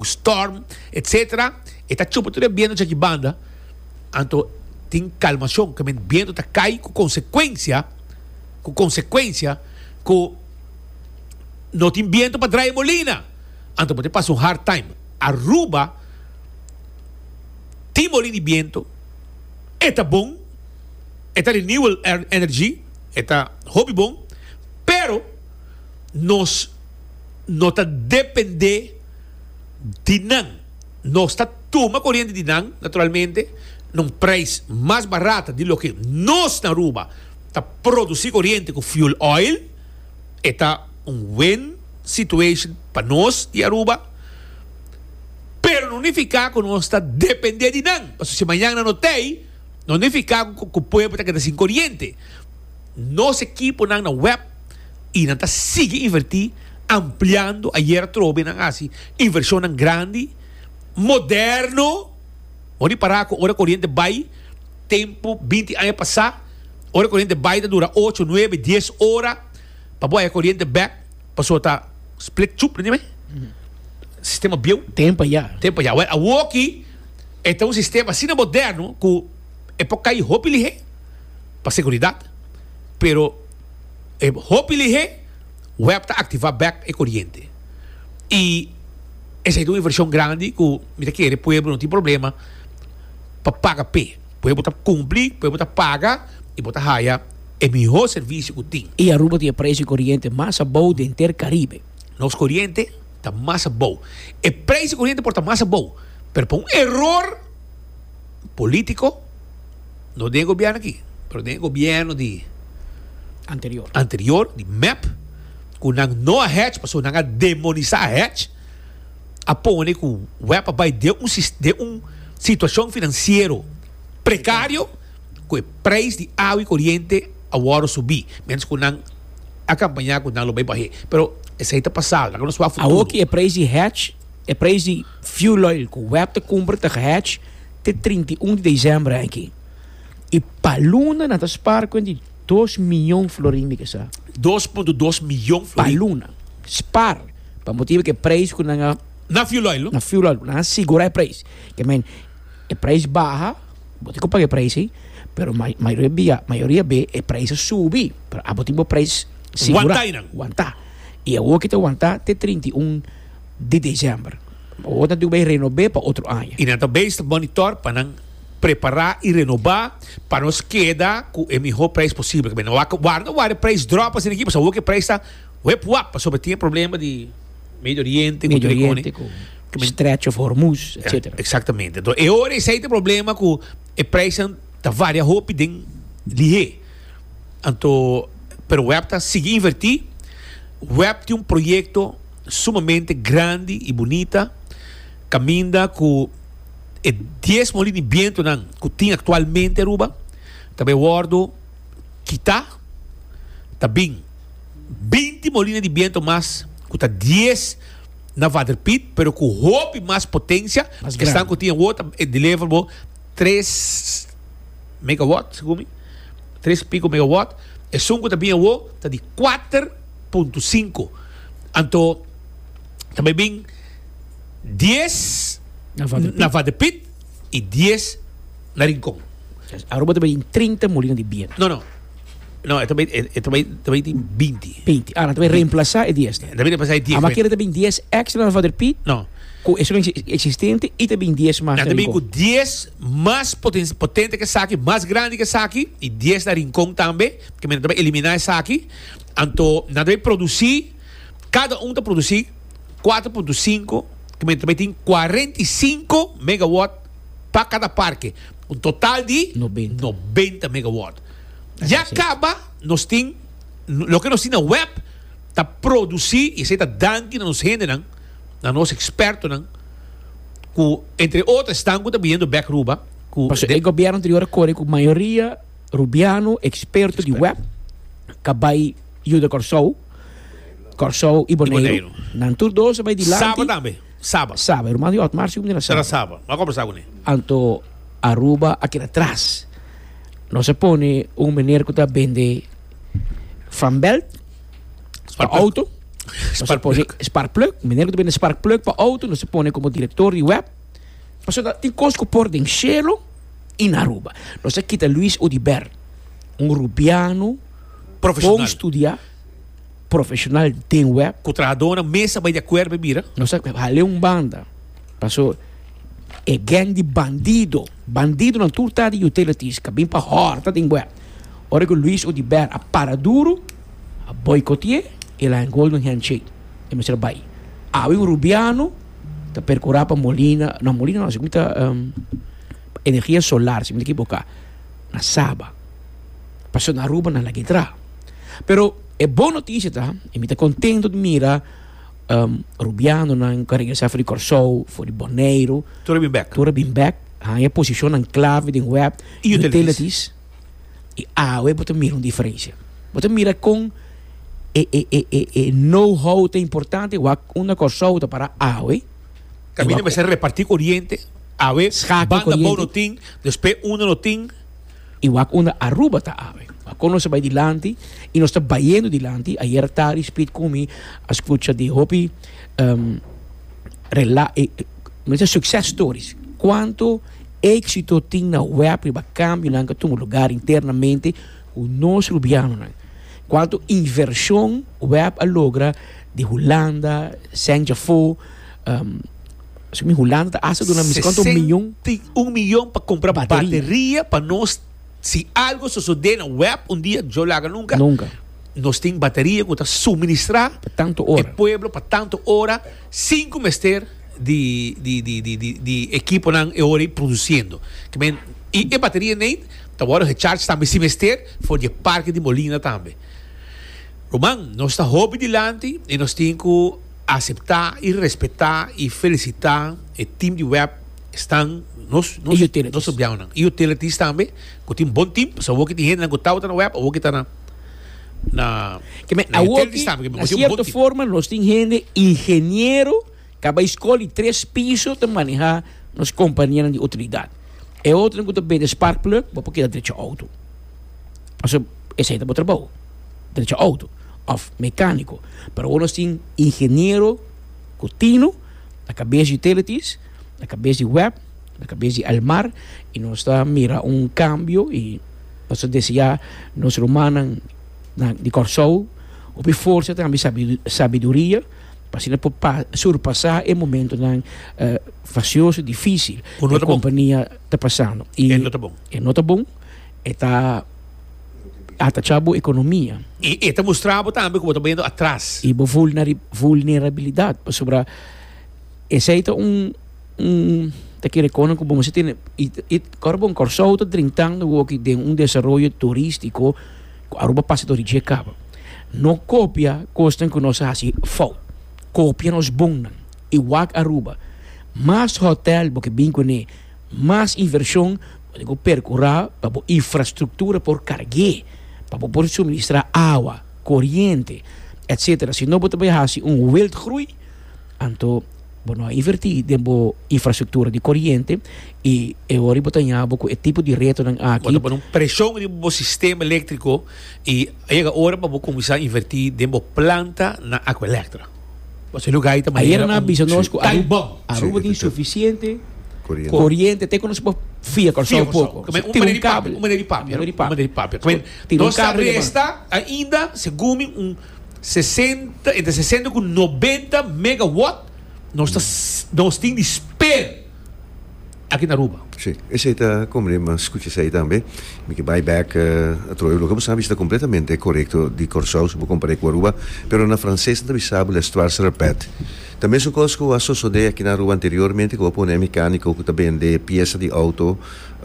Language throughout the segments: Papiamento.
ku storm etc. E ta chupa tur e bientu dje ki banda, anto tin kalmashon ke men bientu ta kai ku konsekuensia, ku konsekuensia ku no tin bientu pa drai e molina, anto bo te pasa un hard time. Aruba tin molin di bientu, e ta bon, e ta renewal energy, e ta hopi bon, pero nos no ta depende. di nan. Nos ta tuma koriente di nan, naturalmente, na un preis mas barat di loke nos na Aruba ta produsi koriente ku fuel oil. E ta un win situation pa nos di Aruba, pero no nifiká ku nos ta dependé di nan, pasobra si mañana no t'ei, no nifiká ku pueblo ta keda sin koriente. Nos ekiponan na web i nan ta sigui invertí ampliando. Ayer atrobe nan hasi invershonnan grandi, moderno. Bon di pará ku ora koriente bai, tempu binti aña pasá ora koriente bai ta dura ocho, nuebe, dies ora pa bo haña koriente bèk pasobra ta split chup nan dje sistema bieu. Tempu ayá. Tempu ayá. Wèl awoki e ta un sistema asina moderno ku. e por kai hopi lihé pa seguridat, pero e hopi lihé wèp ta aktivá bèk e koriente. I esei ta un invershon grandi ku mi ta kere pueblo no tin problema pa paga p'e. Pueblo ta kumpli, pueblo ta paga i bo ta haya e mihó servisio ku tin. I Aruba tin e preis di koriente mas abou di henter Karibe. Nos koriente ta mas abou. E preis di koriente por ta mas abou, pero pa un eror. polítiko, no den e gobièrnu aki, pero den e gobièrnu di Anterior. anterior, di mep, ku nan no a hèch, pasobra nan a demonisá hèch, a pone ku web a bai den un sis, den un situashon finansiero prekario, ku e preis di awa i koriente a wòrdu subí, miéntras ku nan a kampañá ku nan lo bai bah'é. Pero esei ta pasado, nan a nos wak futuro. Awor ki e preis di hèch. E preis di fuel oil ku web ta kumpra ta gehèch te trinta i un di desèmbr aki i pa luna nan ta spar kuent di dos miyon florin, mi ke sa. Dos punto dos miyon florin? Pa luna. Spar pa motibu ku e preis ku nan a. Na fuel oil? Na fuel oil, ku nan a sigura e preis. Ke men, e preis baha, bo tin ku paga e preis ei, pero mayoria bia, mayoria be e preis a subi, pero abo tin bo preis sigura. Wantá i nan? Wantá. I awor ki ta wantá te trinta i un. di diciember. Bo ta tin ku bai renob'é pa otro aña. I nan ta bai sta monitor pa nan prepará i renobá pa nos keda ku e mihó preis posibel. Kaba e nan wak warda wak e preis dròp asina aki pasobra awor e preis ta wep wap pasobra tin e problema di Medio Oriente ku tur e kos. Medio Oriente ku Stretch of Hormuz etcetera. Eksaktamente. Enton e ora esei ta e problema ku e preisnan ta varia hopi den lihé. Anto pero wep ta sigui invertí. Wep tin un proyekto. sumamente grandi y bunita, caminda cu e dies molini bientonan cu tin actualmente Aruba ta bay wordo kita, ta bin binti molina di biento mas cu ta dies na waterpit pero cu hopi mas potencia, esnan cu tin awo ta deliver bo tres megawatt, segun mi, tres y pico megawatt, esun cu ta bin awo ta di kuater. punto sinku. Anto ta bai bin dies na Vadepiet y dies na Rincon. Aruba ta bai tin trinta molino di biento. No, no. No, e ta bai, e ta bai, ta bai tin binti. Binti. Ah, nan ta bai reemplasa e dies. Ta bai reemplasa e dies. Ama kere ta bai dies extra na Vadepiet. No. Ku eso nan existente y ta bai dies mas na Rincon. Nan ta bai ku dies mas potente ke esaki, mas grandi ke esaki y dies na Rincon tambe. Ke men nan ta bai elimina esaki. Anto nan ta bin produsí, kada un ta produsí kuater punto sinku kilometer, bai tin kuarenta i sinku megawòt pa kada parke, un total di nobenta megawòt. Ya kaba nos tin, loke nos tin na web ta produsí, i esei ta danki na nos hendenan, na nos ekspertonan ku entre otro esnan ku ta biniendo bèk Aruba ku. Pasobra e gobierno anterior a kore ku mayoria. Rubiano, eksperto di web, ta bai yuda Kòrsou, Kòrsou i Boneiru. Nan tur dos a bai dilanti. Saba tambe, saba. Saba, ruman di Otmar si ku bini na saba. Ta na saba, bo a kòmbersá ku ne. Anto Aruba a keda tras. Nos a pone un meneer ku ta bende fanbelt pa outo. Nos a pone sparkplug, un meneer ku ta bende sparkplug pa outo, nos a pone komo direktor di web. Pasobra tin kos ku por den shelo. i na Aruba. Nos a kita Luis Odiber, un rubiano bon studia, profesional den web. Ku trahadónan mes a bai di akuerdo pa e bira. Nos a hala e un banda, paso e geng di bandido, bandidonan tur ta di utilities ku a bin pa hòrta den web. Ora ku Luis Odiber a para duru, a boikote'é, el a hende hold un handshake, e mester a bai. Awe un rubiano. ta percurá pa molina, no, molina no, según ta um, energía solar, si me equivoca, na Saba. Paso na Aruba, na Laguedra. Pero e bon noticia ta, e mi ta contento de mira um, Rubiano nan ka regresa for di Corsou, for di Bonaire. Tura bin back. Tura bin back. Haya posicionan clave den web. Utilities. I awe bo ta mira un diferensia. Bo ta mira kon e, e, e, e, e know-how ta importante, wak un na Kòrsou ta para awe. Kaminda mester repartí koriente, awe banda bou no tin, despues unda no tin. I wak unda Aruba ta awe. Wak kon nos ta bai dilanti, i nos ta bayendo dilanti. Ayera tardi Speed ku mi a skucha di hopi um, rela, e, men se sukses stories. Kuantu. Éksito tin na web riba kambio nan ke tuma lugar internamente ku nos rubianonan. Kuantu invershon web a logra di Hulanda, Sènjafo, Ehm, mi Hulanda ta hasta duna mi kuantu miyon. Sesenta i un miyon pa kumpra bateria pa nos si algo sosodé na web un dia djou laga nunka. Nunka. Nos tin bateria ku ta suministrá. Pa tantu ora. E pueblo pa tantu ora. Sinku mester di ekiponan e ora ei produsiendo. I e bateria nei ta wòrdu hecharge tambe si mester for di e parke di molina tambe. Ruman, nos ta hopi dilanti i nos tin ku aseptá i respetá i felisitá e tim di web esnan, nos nos empleadonan i utilities tambe ku tin bon tim pasobra awor ke tin hendenan ku tabata na web awor ke ta na. na Keme na awoki, entrevistá, porque na boso un cierto bonti. forma nos tin hende ingeniero ke a bai skol di tres piso ta manehá nos kompañenan di utilidad. E otronan ku ta bende spark plug bo por keda drecha outo. Pasobra esei ta bo trabou, drecha outo òf mekániko. Pero awor nos tin ingeniero ku tino na kabes di utilities, na kabes di web. Na kabes di El Mar y nos ta mira un cambio y nos ta desea nos rumannan di Kòrsou hopi forsa tambe sabiduria pa asina por surpasa e momentonan fasioso, dificil cu e compania ta pasando. Y e no ta bon. E no ta bon, e ta atacha bo economia. Y e ta mustra bo tambe cu bo ta bayendo atras. Y bo vulnerabilidad pasobra esey ta un. un ta kere kono ku bo mester tene ora bo na Kòrsou ta drintando woki den un desaroyo turistiko ku Aruba pasa tori dje kaba no kopia kosnan ku nos a hasi fout kopia nos bonnan i wak Aruba mas hotèl bo ke bin kuné mas invershon bo tin ku perkurá pa bo infrastruktura por karg'é pa bo por suministrá awa koriente etsetera sino bo ta bai hasi un wildgroei anto. Bo no a invertí den bo infrastruktura di koriente i e hora bo ta ña bo ku e tipo di retonan aki. Bo ta pone un preshon riba bo sistema eléktriko i a yega ora pa bo kuminsá invertí den bo planta na Aqua Electra. Pasobra e lugá ei ta manera un time bomb. Aruba tin sufisiente koriente te ku nos por fia Kòrsou un poko. Kòrsou ta manera di papia, un manera di papia. Tin un kabel. Nos ta resta ainda, segun mi, un. sesenta, entre sesenta ku nobenta megawatt nos ta nos tin di sper aki na Aruba. Sí, esei ta kombre, m'a skucha esei tambe. Mi ke bai bèk atroyo. Loke bo sa bishita kompletamente korekto di Kòrsou si bo kompar'é ku Aruba, pero na franses nan ta bisa bo l'histoire se répète. Ta mesun kos ku a sosodé aki na Aruba anteriormente ku bo pone un mekániko ku ta bende piesa di outo,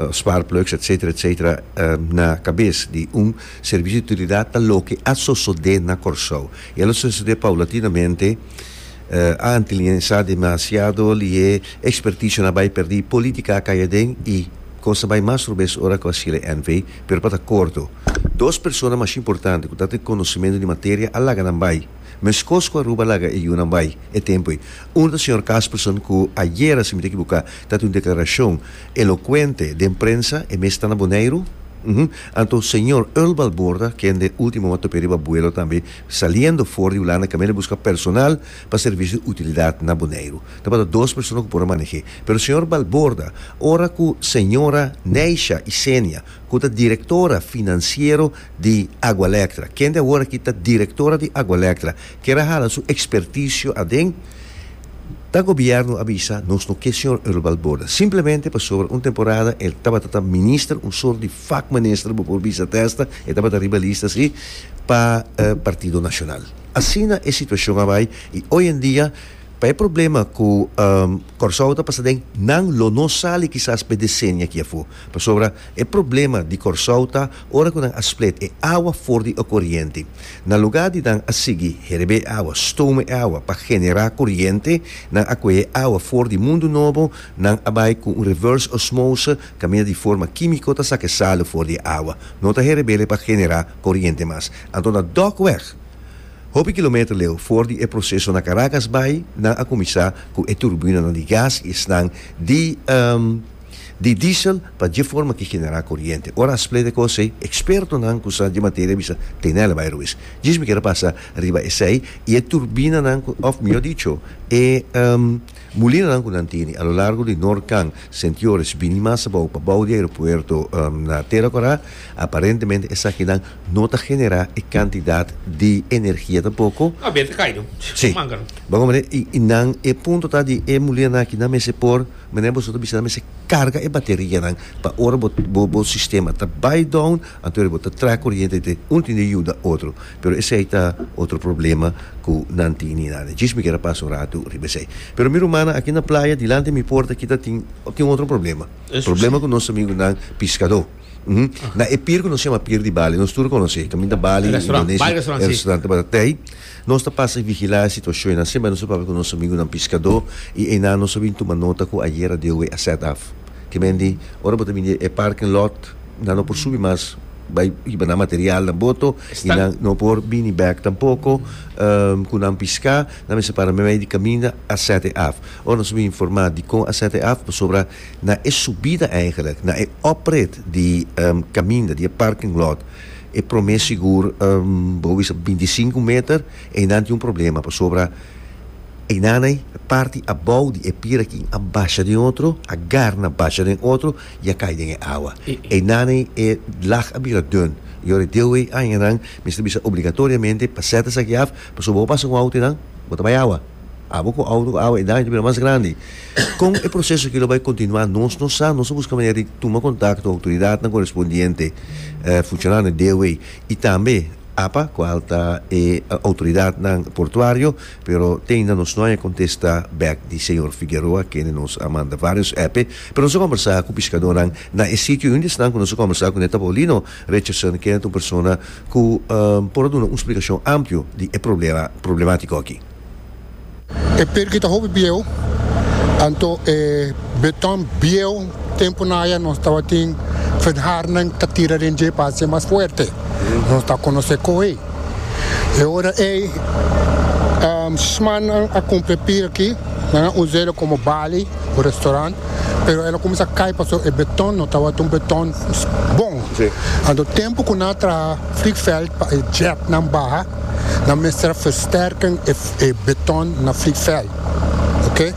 sparkplugs, etsetera, etsetera, na kabes di un Servicio di utilidad ta loke a sosode na Corsou y a lo sosode paulatinamente anti liensa demasiado lie experticio na bay perdi politica a cay aden y cos ta bay mas robes ora cu a cele NV pero pa ta corto dos persona mas importante cu ta tin conocimento di materia a laga nan bay mescos cu Aruba a laga e yunan bay e tempoe uno ta señor Casperson cu ayera si mi ta equibuca ta tin un declaracion Elocuente den prensa e mes ta na Boneiru? Uhum. Anto señor Earl Balborda, kende ultimo a top'e riba buelo tambe saliendo for di Hulanda kaminda buska personal pa servicio di utilidad na Boneiru. Tabata dos persona cu por a maneh'é. Pero señor Balborda, ora cu señora Neisha Isenia, cu ta directora financiero di Agualectra, kende awor aki ta directora di Agualectra, kier a hala su experticio aden, Ta gobierno a bisa nos no ke señor Earl Balborda simplemente pasobra un temporada e tabata ta minister un sort di fak minister bo por bisa testa e tabata riba lista si pa Partido Nacional. Asina e situacion a bai y hoy en dia pa e problema cu Corsou ta pasa den nan lo no sali kisas pa e decennia aki afo. Pasobra e problema di Kòrsou ta ora ku nan a split e awa for di e koriente. Na lugá di nan a sigui herebé e awa, stoma e awa pa generá koriente, nan a kuhé awa for di Mundu Nobo, nan a bai ku un reverse osmose, kaminda di forma kímiko ta saka e salu for di e awa. No ta herebele pa generá koriente mas. Anto na dòk wèg, hopi kilometer leu for di e proseso na Karakas bai, nan a kuminsá ku e turbinanan di gas i esnan di. di diesel pa dje forma ki generá koriente. Ora a splega e kos ei, ekspertonan ku sa dje materia a bisa, Teenella bai Ruiz, djis mi keda pasa riba esei i e turbinanan ku, òf mihó dicho, e mulinanan ku nan tene a lo largo di Noord Kang, Sint-Joris, bini mas abou pa bou di aeropuerto na Tera Kòrá, aparentemente esakinan no ta generá e kantidat di energia tampoko. Tabia ta kai no. Si. Manga no. Bo a komprende? I nan e punto ta di e mulinanan aki nan mester por. Mene boso ta bisa nan mester carga e baterianan pa ora bo bo sistema ta bay down anto bo ta traha coriente te un tin di yuda otro pero esey ta otro problema cu nan tin ni nada djis mi keda pasa un ratu riba esey pero mi rumannan aki na playa dilanti mi porta aki ta tin tin otro problema problema cu nos amigo nan piscado na e pier cu nos shama pier di Bali nos tur conoce caminda Bali Indonesia e restaurante tabata tey. Nos ta pasa vigilá e situashon en asin, bai nos a papia ku nos amigunan piskadó i einan nos a bin tuma nota ku ayera Deowee a sèt af. Ke men di, Ora bo ta bini e parking lot, nan no por subi mas bai hiba nan materialnan boto i nan no por bini bèk tampoko ku nan piská. Nan mester para mei di kaminda a sèt e af. Ora nos a bin informá dikon a sèt e af pasobra na e subida, èigelik na e oprit di kaminda di e parking lot, E prome sigur bo bisa pa binti sinku meter einan tin un problema pasobra einanei parti abou di e pira kin a basha den otro a garna basha den otro i a kai den e awa einanei e lag a bira dun i ora e deue añanan mester bisa obligatoriamente pa sèt esaki af pasobra bo pasa ku un auto einan bo ta bai awa. Abo ku awo awo e daño ta bira mas grandi. Kon e proseso aki lo bai kontinuá? Nos no sa. Nos a buska manera di tuma kontakto ku outoridatnan korespondiente, funshonarionan di DOW i tambe apa, kual ta e outoridatnan portuario, pero te ainda nos no haña kontesta bèk di señor Figueroa, kende nos a manda vários èp'e. Pero nos a kòmbersá ku piskadónan na e sitio i un di esnan ku nos a kòmbersá kuné ta Paulino Richardson, kende ta un persona ku por a duna un splikashon amplio di e problema problemátiko aki. E perki ta hopi bieu, anto e beton bieu, temponan aya nos tabatin fedharnan ta tira den dje pa hace mas fuerte, nos ta conoce cohe. E ora ey sismannan a cumpre pira aki, nan a usa ela como bali o restaurant, pero ela cuminsa cay pasobra e beton no tabata un beton bon, anto tempo cu nan a traha Flickveld pa e jetnan baha, Nan mester versterken e beton na vliegveld. Ok.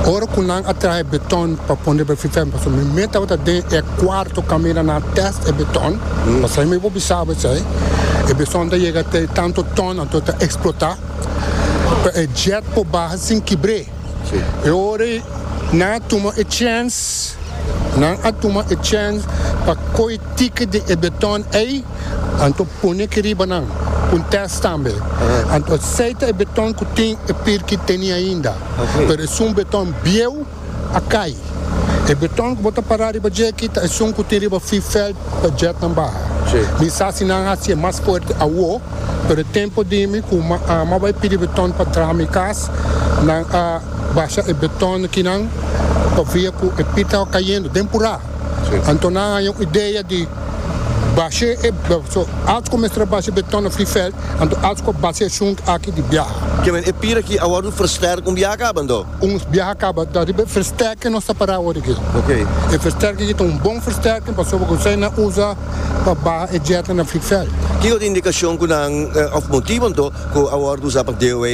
Ora cu nan a traha e beton pa pone riba e vliegveld, pasobra mi meen tabata den e cuarto camina nan a test e beton, pasobra mi bo bisabo esey, e beton ta yega te tanto ton, anto ta explota, pa e jet por baha sin kibre. E ora ey nan a tuma e chance, nan a tuma e chance pa coge ticket di e beton ey. Anto pone aki riba nan pa un test tambe. Anto a seita e beton cu tin e pirki teni ainda, pero esun beton bieu a cay. E beton cu bo ta para riba dje aki ta esun cu tin riba V-felt pa jetnan baha. Mi sa si nan haci e mas fuerte awo, pero e tempo di mi cu Mama a bay pidi beton pa traha mi cas, nan a basha e beton akinan pa via cu e pir taba cayendo den pura. Anto nan a haña un idea di. Bashe e so alts ku mester a bashe be tòna free veld, anto alts ku a bashe esun aki di biaha. Ke men e pira aki awor un versterk un biaha kaba anto? Un biaha kaba ta riba e versterk ke nos ta para awor aki. E versterk aki ta un bon versterk pasobra ku esei nan usa pa baha e djèta na free veld. Kiko ta indikashon ku nan òf motibu anto ku awor ta usa pa DOA?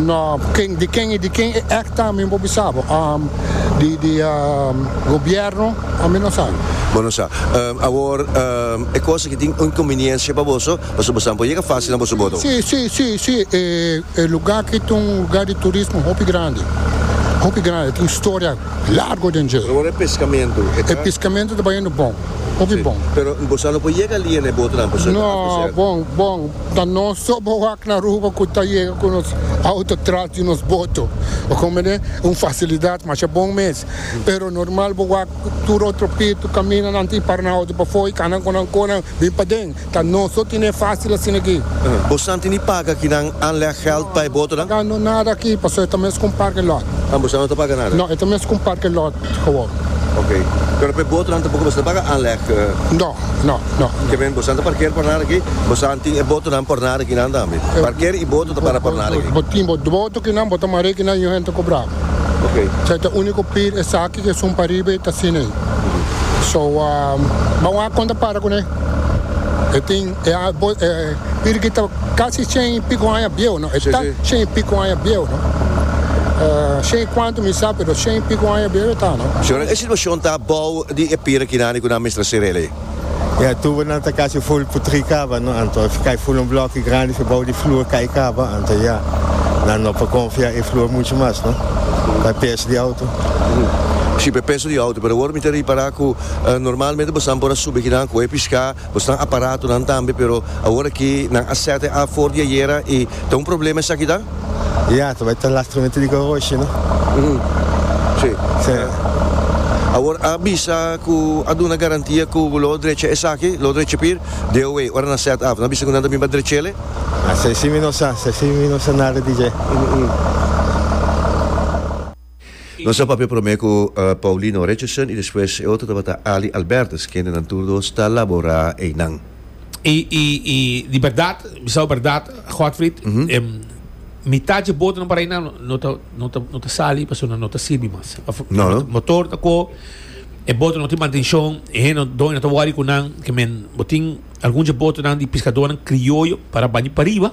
No, ken, di ken i di ken e act ta mi no por bisa bo. Um, di di um, gobierno a mi no sabi. Bo no sa. Um, awor um, e cosa ki tin inconveniencia pa boso, pasobra boso tampo yega facil na boso bodo. Si, si, si, si, e, e lugar ki ta un lugar di turismo hopi grandi, hopi grandi, tin historia largo den dje. Awor e pescamento e ta. E pescamento ta bayendo bon, hopi bon. Pero boso a no por yega ali e na e botonan, pasobra e ta alto cerca. No, bon, bon. Ta nos so bo wak na Aruba cu ta yega cu nos auto tras di nos boto. Bo comprende? Un facilidad masha bon mes. Pero normal bo wak tur otro pitu, camina nan tin para nan auto pafo y cana cu nan conan bin paden. Ta nos so tin e facil asina aki. Bo san tin di paga aki nan anleg geld pa e botonan? Pagando nada aki, pasobra e ta mes cu un parking lot. Ah, bo san no ta paga nada? No, e ta mes cu un parking lot. Gewoon. Ok. Pero p'e botonan tampoco boso ta paga aanleg? No, no, no. Ke men bosonan ta parker por nada aki? Bosonan tin e botonan por nada akinan tambe? Parker y boto ta para por nada aki? Bo tin bo boto kinan bo ta mare kinan y un hende ta cobra bo. Ok. Esaki ta unico pir esaki ke sun pariba y ta asina ey. So, bo a wak con ta para cun'e. E tin. E arbol, e piri ki ta kasi shen i piku aña bieu, no? E ta shen i piku aña bieu, no? Shen i kuantu mi sa, pero shen i piku aña bieu e ta, no? Si nan e situashon ta abou di e piri kinan di ku nan mester sera el ei. Ya, tubonan ta kasi ful putri kaba, no? Anto if kai ful un bloki grandi if e bou di flur kai kaba, anto ya, nan no por konfia e flur muchu mas, no? Pa peso di outo. Si, pa e peso di outo, pero awor mi ta ripara ku normalmente bosan por a subi kinan ku e piská. Bosnan aparatonan tambe pero awor aki nan a sèt e afor di ayera i ta un problema esaki ta? Ya, ta bai ta lastramente di koroshi, no? Sí. Sí. Awor a bisa ku a duna garantia ku bo lo drecha esaki, lo drecha pir DOA ora nan sèt af. Nan a bisa ku nan ta bin pa drechele? Esei sí mi no sa, esei sí mi no sa nada di dje. Nos a papia promé ku Paulino Richardson i despues e otro tabata Ali Albertus, kende nan tur dos ta laborá einan. I i i di bèrdat, bisao bèrdat Godfrid, mitá dje botonan para einan no ta no ta no ta sali pasobra nan no ta sirbi mas. Òf motor ta kó, e boto no tin mantenshon, e hende doño no ta wòri ku nan, ke men bo tin algun dje botonan di piskadonan krioyo para baña pariba,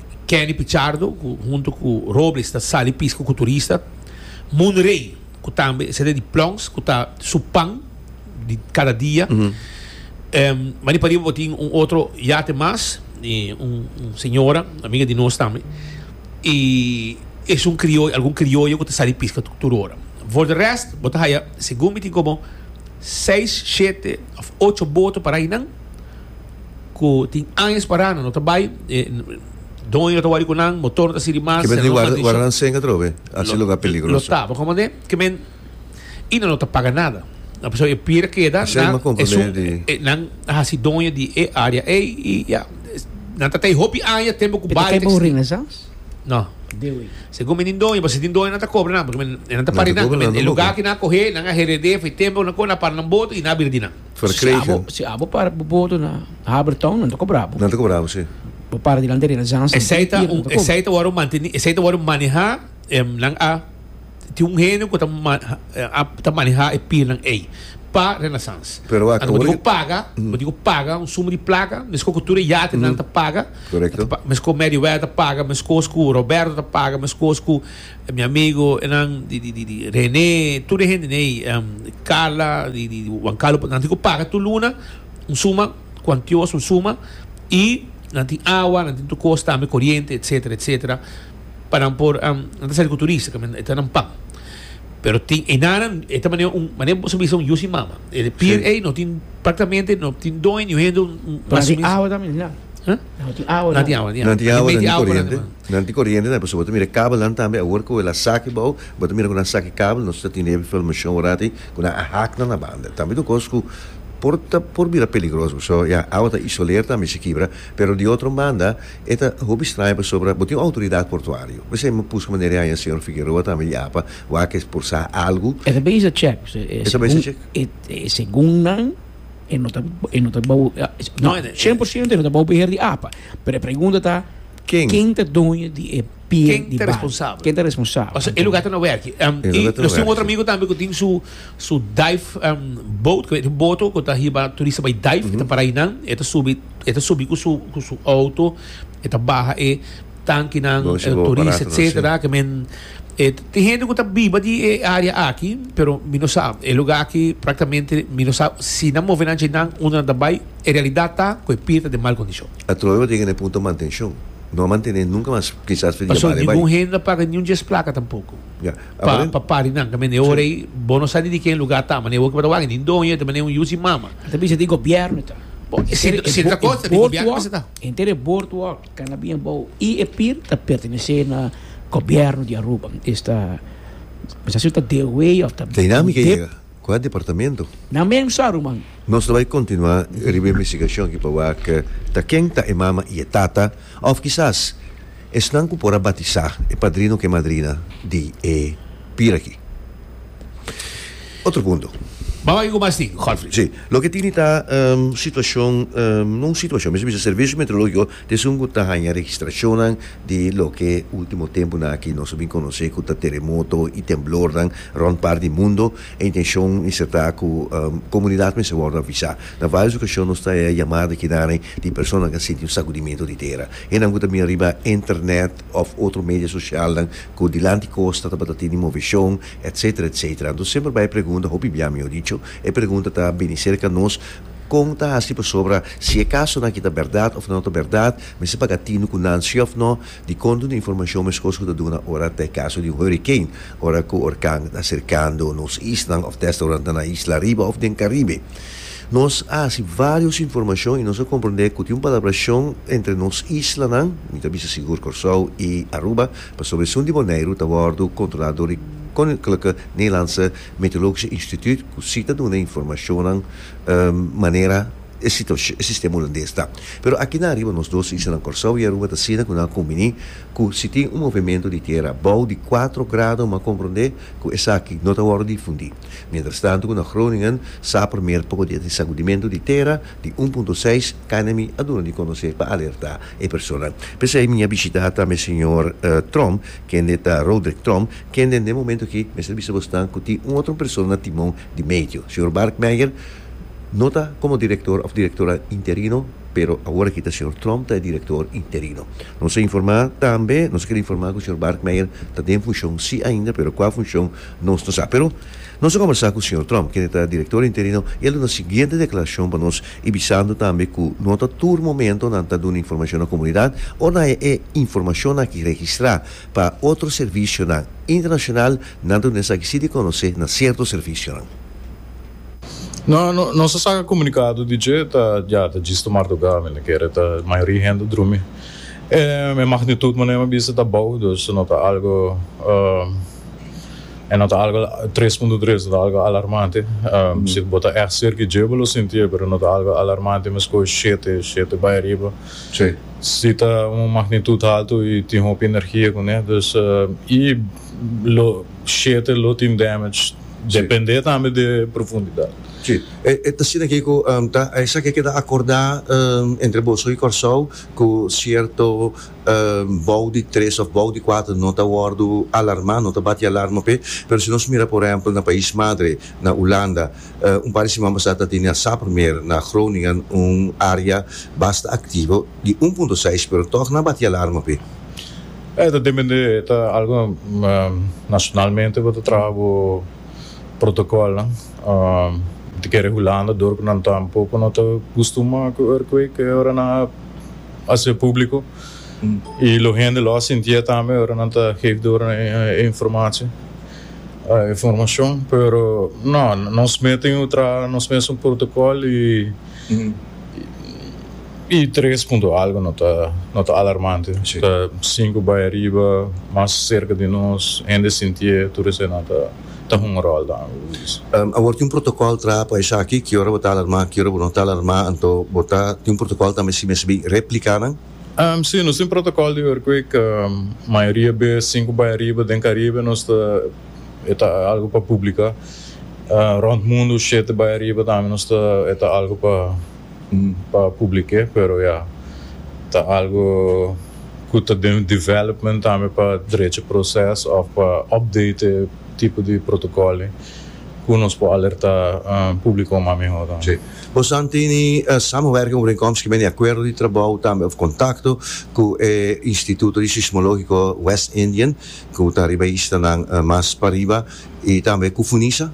Kenny Pichardo cu hunto cu Robles ta sali pisca cu turista. Moon Rey cu tambe e sete di Plons cu ta su pan di cada dia. Em, ma di pariba bo tin un otro yate mas, di un, un señora, amiga di nos tambe. Y esun crioyo, algun crioyo cu ta sali pisca tur, tur ora. Voor de rest bo ta haya, segun mi tin como seis, shete of ocho boto parai nan. cu tin añas parana no ta bay e doño no ta wari cu nan motor no ta sirbi mas Kimen tin guarda guarda nan senga atrobe haci lugar peligroso. Lo taba como de kimen y nan no ta paga nada a pesar e pier a keda nan esun e nan a haci doño di e area ey y ya nan ta tey hopi aña tempo cu bay ta extindi. No segun mi tin doño pasobra si tin doño nan ta cobra nan pasobra e nan ta para di nan kimen e lugar cu nan a coge nan a herede fo'i tempo nan coge nan a para nan boto y nan a bira di nan. verkregen. Si abo para bo bodo na Habertown nan ta kobra bo. Nan ta kobra bo, si. Bo para dilanti di Renaissance. Esei ta un esei ta wòrdu manteni esei ta wòrdu manehá em nan a tin un henio ku ta a ta manehá e pirnan ei pa Renaissance. Pero wak anto bo tin ku paga bo tin ku paga un suma di plaka meskos ku tur e yate nan ta paga meskos Meriwether ta paga meskos ku Roberto ta paga meskos ku Mi amigo enan di di di Rene tur e hende nei Carla di di Juan Carlo nan tin ku paga tur luna un suma kuantios un suma i nan tin awa nan tin tur kos tambe koriente etsetera etsetera pa nan por nan ta sali ku turista ke men e ta nan pan pero tin enanan e ta manera un manera boso bisa un yushi i mama e pier ei no tin praktamente no tin doño hende un Paran di awa tambe di nan. Nan tin awa nan. Nan tin awa nan tin koriente. Nan tin koriente tambe pasobra bo ta mira e kabelnan tambe awor ku el a sak i bou bo ta mira ku nan a sak e kabel nos ta tene informashon orati ku nan a hak nan na banda tambe ta un kos ku por ta por bira peligroso paso ya awa ta isoler tambe si kibra pero di otro banda e ta hopi straña pasobra bo tin un outoridat portuario mester mi buska manera di haña señor Figueroa tambe di apa wak e por sa algu. E ta bisa chek paso e segun nan. e no ta e no ta bou no cien por ciento e no ta bou beheer di apa pero e pregunta ta Ken? Ken ta doño di e pie Ken di ta responsabel? Ken ta responsabel? O sea, e lugar ta na werki. Um, e lugar ta na werki. otro amigo tambe ku tin su su dive um, boat, ku e boto ku ta hiba turista bai dive, mm -hmm. ta para inan, e ta subi, e ta subi ku su ku su auto, e ta baha e tankinan, e turista, etcetera, ke men Tin hende ku ta biba di e área aki, pero mi no sa. E lugá aki práktamente mi no sa si nan move nan dje nan, unda nan ta bai. E realidat ta ku e pia ta den mal kondishon. Atrobe bo tin kende punto mantenshon. No a mantené nunka mas kisas for di djebal e bai. Pasobra ningun hende no a paga niun djes plaka tampoco pa pari nan. Ta mira e ora ei bo no sa ni di ken lugá ta, mane e oki bo ta wak, ni doño e ta mane un yusi i mama. Nan ta bisa di gobièrnu ta. Bo, si e ta kos ta di gobièrnu mester ta. Henter e bortu wòrdu. Kanabia bou i e pir ta pertenesé na Gobièrnu di Aruba. Es ta bisa si ta Deoway òf ta. Dinamika i yega kua departamentu? Nan men sa, ruman. Nos ta bai kontinuá riba e investigashon aki pa wak ta ken ta e mama i e tata òf kisas esnan ku por a batisá e padrino ku e madrina di e pir aki. Otro punto. Bou ahi cu mas tin, Godfrey? Si. Loke tini ta situacion, no un situacion, mi ta bisa Servicio Meteorologico ta esun cu ta haña registracionnan di loke ultimo temponan aki nos a bin conoce cu ta teremoto y temblornan rond part di mundo. E intencion mester ta cu comunidad mester wordo avisa. Na varios ocasion nos ta haña yamada di kidanan di personanan cu a sinti un sacudimento di tera. E nan cu ta bini riba Internet of otro media socialnan cu dilanti costa tabata tene movecion etcetera etcetera anto semper bai pregunta hopi bia mihor dicho e pregunta ta bini cerca nos con ta haci pasobra si e caso nan aki ta berdad of ta no ta berdad mester paga tino cu nan si of no di con duna informacion mescos cu ta duna ora ta e caso di un hurricane ora cu orkan ta acercando nos islan of desda ora nan ta na isla ariba of den caribe nos a haci varios informacion y nos a comprende cu tin un palabracion entre nos isla nan mi ta bisa sigur Corsou y Aruba Pasobra esun di Boneiru ta wòrdu kontrolá dor di Koninklijke Nederlandse Meteorologische Instituut ku si ta duna informashonnan manera e situashon e sistema hulandes ta. Pero aki nan riba nos dos islanan Kòrsou i Aruba ta asina ku nan a kumbiní ku si tin un movementu di tiera bou di kuatro grado m'a komprondé ku esaki no ta wòrdu difundí mientrastantu ku na Groningen sa promé poko di e sakudimentu di tera di un punto seis kanda mi a duna di konosé pa alertá e persona. P'esei mi a bishitá tambe señor Trom, kende ta Roderick Trom, kende n'e momento akí mester bisa bos nan ku tin un otro persona na timon di medio. Señor Barkmeyer no ta komo direktor òf direktora interino, pero awor akí ta señor Trom ta e direktor interino. Nos a informá tambe, nos a kere informá ku señor Barkmeyer ta den funshon sí ainda, pero kua funshon nos no sa. Pero. Nos a kombersá ku señor Trump, kende ta direktor interino, i el duna siguiente deklarashon pa nos i bisando tambe ku no ta tur momento nan ta duna informashon na komunidat o na e informashon aki registrá pa otro servisionan internashonal, nan ta duna esaki sí di konosé na sierto servisionan. No, no, nos a saka komunikado di dje ta ya ta djisto marduga, mi ta kere ta mayoria hende drumi. E magnitut, manera mi a bisa, ta bou, dus no ta algo E no ta algo tres punto tres, no ta algo alarmante. Si bo ta ègt serka i dje bo lo sintié, pero no ta algo alarmante meskos shete, shete bai ariba. Si ta un magnitut haltu i tin hopi energia kuné, dus i lo shete lo tin damage dependé tambe di e profundidat. Sí, e ta asina ke ku ta esaki a keda akordá entre boso i Kòrsou ku sierto bou di tres of bou di kuater no ta wordu alarma, no ta bati alarma p'e, pero si nos mira por ehempel na pais madre, na Ulanda, un par di siman pasá ta tene asá promé na Groningen un área basta aktivo di un punto seis pero tòg nan bati alarma p'e. E ta dependé, e ta algu nacionalmente bo ta traha bo protocolnan, di kere Hulanda dor ku nan ta un poko no ta kustumá ku earthquake e ora nan a Hasi e publico y lo hende lo a sintia tambe ora nan ta geef door nan e informatie, e informacion, pero no, nos mes tin un traha nos mes un protocol y y tres punto algo no ta no ta alarmante, ta cinco bay ariba mas cerca di nos hende sintie tur esei nan ta. ta hunga ròl dan, bo Luis? Awor tin un protokòl traha pa esaki, ki ora bo ta alarmá, ki ora bo no ta alarmá, anto bo ta tin un protokòl tambe si mes bin repliká nan? Sí, nos tin protokòl di earthquake, mayoria bes sin ku bai ariba den Karibe nos ta, e ta algu pa publiká, rònt mundu shete bai ariba tambe nos ta, e ta algu pa. pa publike pero ya ta algo cu ta den development tambe pa drecha proces of pa update e tipo di protocolnan cu nos por alerta publico mas mihor tambe. Si. Bosan tin e samenwerking overeenkomst ki meni acuerdo di trabou tambe of contacto cu e Instituto di Sismologico West Indian cu ta riba e islanan mas pariba y tambe cu Funisa?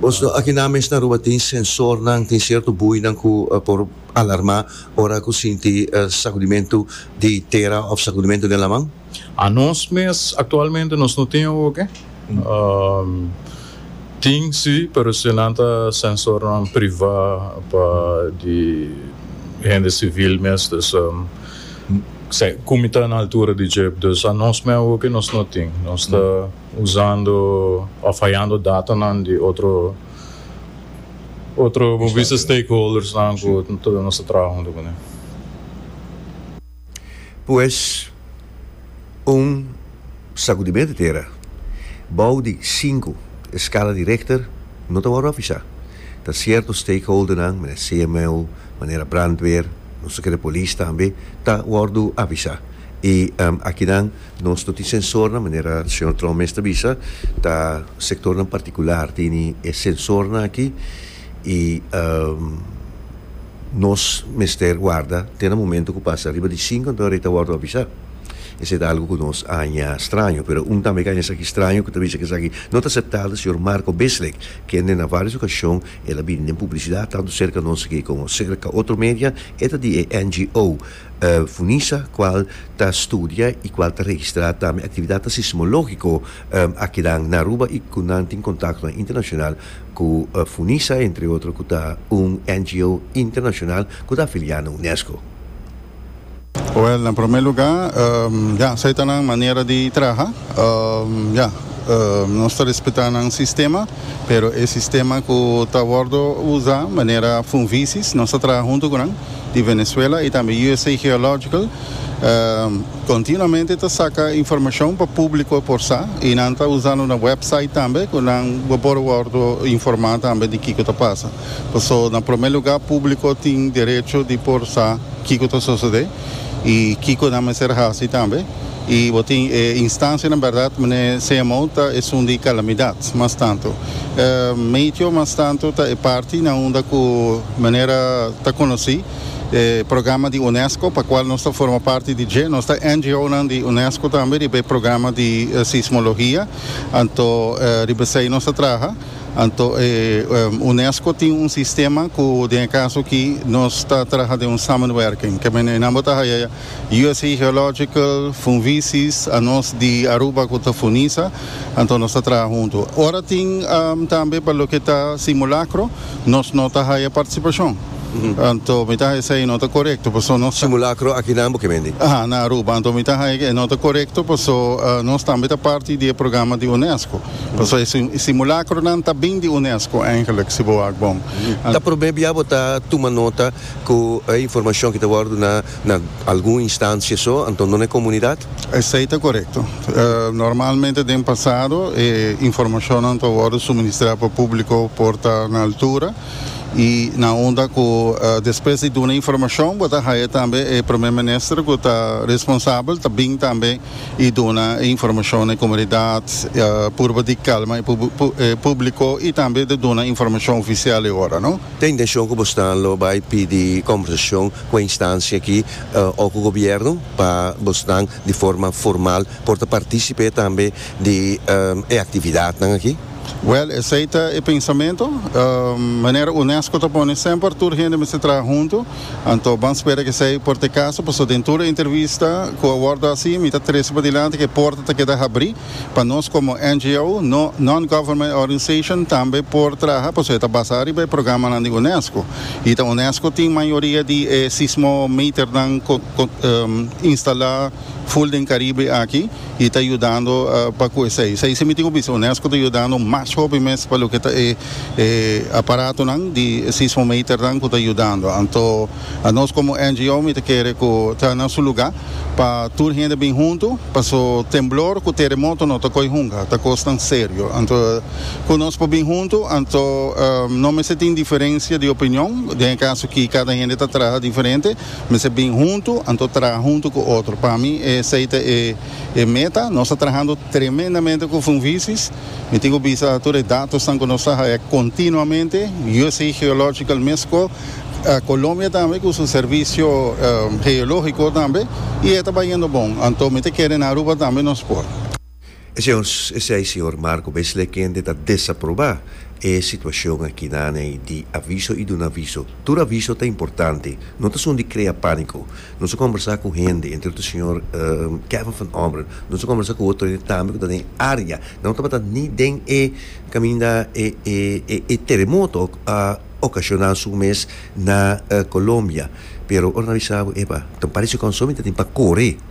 Bos no aki nan mes na Aruba tin sensornan, tin cierto buinan cu por alarma ora cu sinti sacudimento di tera of sacudimento den laman? Anos mes actualmente nos no tin hoge. Tin si, pero si nan ta sensornan priva pa di hende civil mes dus cu mi ta na altura di djip, dus anos mes hoge nos no tin. Nos ta. Usando of hayando datanan di otro otro bo bisa stakeholdersnan ku nos ta traha huntu ku nan. Pues un sakudimentu tera bou di sinku eskala di Richter no ta wòrdu avisá. Ta sierto stakeholdernan, manera CMO, manera brandweer, nos ta kere polis tambe, ta wòrdu avisá. I akinan Nos no tin sensornan, manera señor Trump mes ta bisa, ta sectornan particular tini e sensornan aki y nos mester warda te na momento cu pasa riba di cinco enton rei ta wordo avisa. Esey ta algo cu nos a haña straño, pero un tambe cu a haña esaki straño cu ta bisa cu esaki no ta aceptabel ta señor Marco Bislick, kende na varios ocasion el a bini den publicidad tanto cerca nos aki como cerca otro media, e ta di e NGO. Funisa cual ta studia y cual ta registra tambe actividadnan sismologico akinan na Aruba y cu nan tin contactonan internacional cu Funisa, entre otro cu ta un NGO internacional cu ta afilia na Unesco. Well, na prome luga, ya, esai ta nan manera di traha. Ya, nos ta respeta nan sistema, pero e sistema cu ta wordo uza manera Funvisis, nos ta traha hunto cu nan. di Venezuela y tambe usa Geological continuamente ta saca informacion pa publico por sa y nan ta usando nan website tambe cu nan bo por wordo informa tambe di kico ta pasa paso na prome lugar publico tin derecho di por sa kico ta sosode y kico nan mester haci tambe. Y bo tin e instancianan berdad mene CMO ta esun di calamidad mas tanto. Meteo mas tanto ta e parti na unda cu manera ta conoci e programa di UNESCO pa cual nos ta forma parti di dje. Nos ta NGOnan di UNESCO tambe riba e programa di sismologia. Anto riba esey nos ta traha. Anto e UNESCO tin un sistema cu den e caso aki nos ta traha den un samenwerking. Ke mene nan bo ta haya. USA Geological, Funvisis, a nos di Aruba cu ta Funisa, anto nos ta traha hunto. Ora tin tambe pa loke ta simulacro, nos no ta haya participacion. Anto mi ta haya esey no ta corecto, paso nos ta. Simulacro aki na Bokebendi? Aha, na Aruba. Anto mi ta haya cu e no ta corecto, paso nos tambe ta parti di e programa di UNESCO. Paso e simulacronan ta bin di UNESCO, eigenlijk, si bo wak bon. Ta probe bia bo ta tuma nota Cu e informacion ki ta worde duna na algun instancia so, anto no na e comunidad? Esey ta corecto. Normalmente den pasado e informacionnan ta worde suministra pa publico por ta na altura y na unda cu despues di duna informacion bo ta haya tambe e Primer Minister cu ta responsabel ta bin tambe y duna e informacion na e comunidad purba di calma e publico y tambe ta duna informacion oficial e ora, no. Ta intencion cu bosnan lo bay pidi conversacion cu e instancia aki o cu gobierno pa bosnan di forma formal por ta participe tambe di e actividadnan aki? Wel, esey ta e pensamento. Manera UNESCO ta pone semper tur hende mester traha hunto, anto ban spera cu esey por ta e caso, pasobra den tur e intervista cu a wordo haci mi ta trece padilanti cu e porta ta keda habri. Pa nos komo NGO, Non-Government Organization, tambe por traha pasobra e ta basá riba e programanan di UNESCO. I ta UNESCO tin mayoria di e sismometernan instalá ful den Karibe aki i ta yudando pa ku esei. Esei sí mi tin ku bisa, UNESCO ta yudando mas hopi mes pa loke ta e aparatonan di sismometernan ku ta yudando. Anto. Nos komo NGO mi ta kere ku ta na su lugá pa tur hende bin huntu paso temblor ku teremoto no ta koi hunga, ta kosnan serio. Anto ku nos por bin huntu, anto no mester tin diferensia di opinion, den e kaso akí kada hende ta traha diferente, mester bin huntu, anto traha huntu ku otro. Pa mi esei ta e meta. Nos ta trahando tremendamente ku Funvisis. Mi tin ku bisa tur e datosnan ku nos ta hae kontinuamente, USA Geological mes ko. Colombia tambe cu su servicio geologico tambe y e ta bayendo bon. Anto mi ta kere na Aruba tambe nos por. Esey Señor Marco Besley kende ta desaproba e situacion aki naney di aviso y duna aviso. Tur aviso ta importante. No ta sun di crea panico. Nos a combersa cu hende, entre otro Señor Kevin van Ommeren. Nos a combersa cu otro hende tambe cu ta den e area. Nan no tabata ni den e caminda e teremoto. ocasional su mes na Colombia. Pero ora nan bisa abo, epa, ta parece con asunto mi ta tin pa core.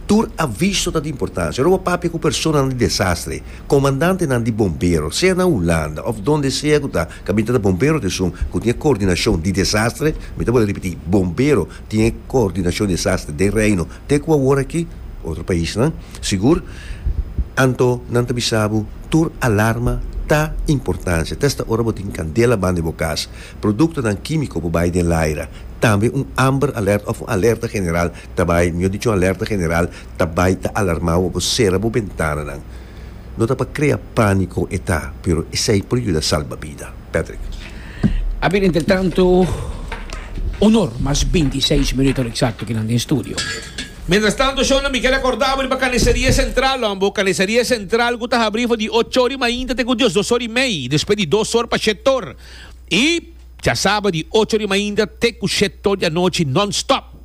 Tur aviso ta di importancia. Ora bo papia cu personanan di desastre, comandantenan di bombero, sea na Hulanda of donde sea cu ta, caminta ta bombero ta esun cu tin e coordinacion di desastre, mi ta bole repeti, bombero tin e coordinacion di desastre den Reino te cu awor aki, otro paisnan, sigur, anto nan ta bisa bo. Tur alarma ta importancia. Ta esta ora bo tin candela banda di bo cas. Productonan quimico por bay den laira. Tambe un Amber Alert of un alerta general ta bay, mejor dicho un alerta general ta bay ta alarma bo pa bo cera bo bentananan. No ta pa crea panico e ta, pero esey por yuda salba bida. Patrick. Abir entretanto, Onor, mas binti seis minuto exacto kinan den studio. Mientras tanto Shona mi ke recorda bo riba Carniceria Central lo ambo, Carniceria Central cu ta habri for di ocho or di mainta te cu dios dos or y mei, despues di dos or pa shett or y ya saba di ocho or di mainta te cu shett or di anochi non stop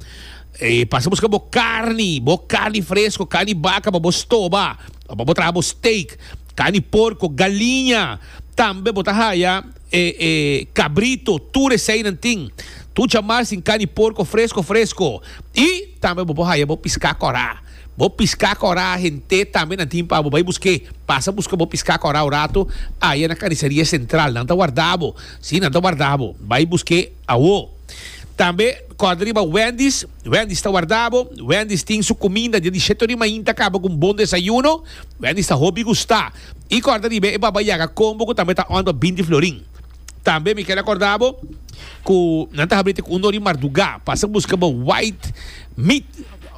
y pasa busca bo carni, bo carni fresco, carni baca pa bo stoba o pa bo traha bo steak, carni porco, galiña tambe bo ta haya. E e cabrito, tur eseinan tin. Tur chamar sin cani porco fresco fresco. Y tambe bo por haya bo pisca cora. Bo pisca cora hent'e tambe nan tin pa bo bay busque. Pasa busca bo pisca cora un rato aya na Carniceria Central. Nan ta warda bo. Si, nan ta warda bo. Bay busque awo. Tambe corda riba Wendy's. Wendy's ta warda bo. Wendy's tin su cuminda dia di shete ori mainta caba cu un bon desayuno. Wendy's ta hopi gusta. I kòrda riba e baba yaga kombo ku tambe ta ònt pa binti florin. Tambe mi kel akòrdá bo ku nan ta habri te ku un dor di mardugá pa asa buska bo white meat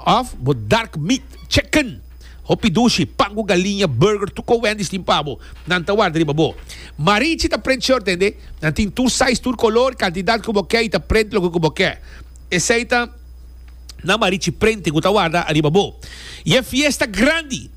òf bo dark meat, chicken, hopi dushi, pan ku galiña, burger, tur kon Wendy's tin pa bo, nan ta warda riba bo. Marichi ta prent short tende, nan tin tur size, tur kolor, kantidat ku bo ke i ta prent loke ku bo ke. Esei ta nan Marichi Printing ku ta warda riba bo. I e fiesta grandi!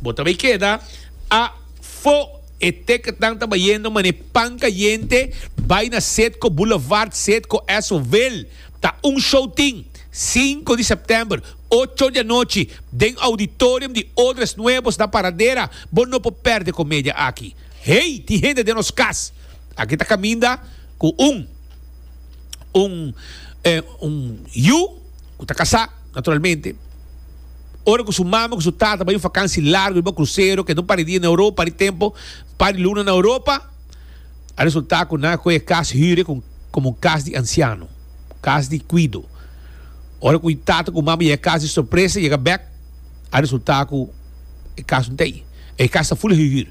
Bo ta bay keda afo. E tekentnan ta bayendo manera pan cayente, bay na Citgo Boulevard, Citgo Esso-ville. Ta un showtin, sinku di september, ocho di anochi, den auditorium di Odres Nuevos na Paradera. Bo no por perde e comedia aki. Hey, tin hende den nos cas aki ta caminda cu un, un, eh, un yu cu ta casá, naturalmente. Ora cu su mami cu su tata bay un fakansi largo riba un krusero ke no pari dia na Europa, pari tempo, pari luna na Europa, a resulta cu nan a coge e cas hüre como un cas di anciano, cas di cuido. Ora cu e tata cu e mami yega cas di sorpresa, yega bek, a resulta cu e cas no ta ahi. E cas ta full hühür.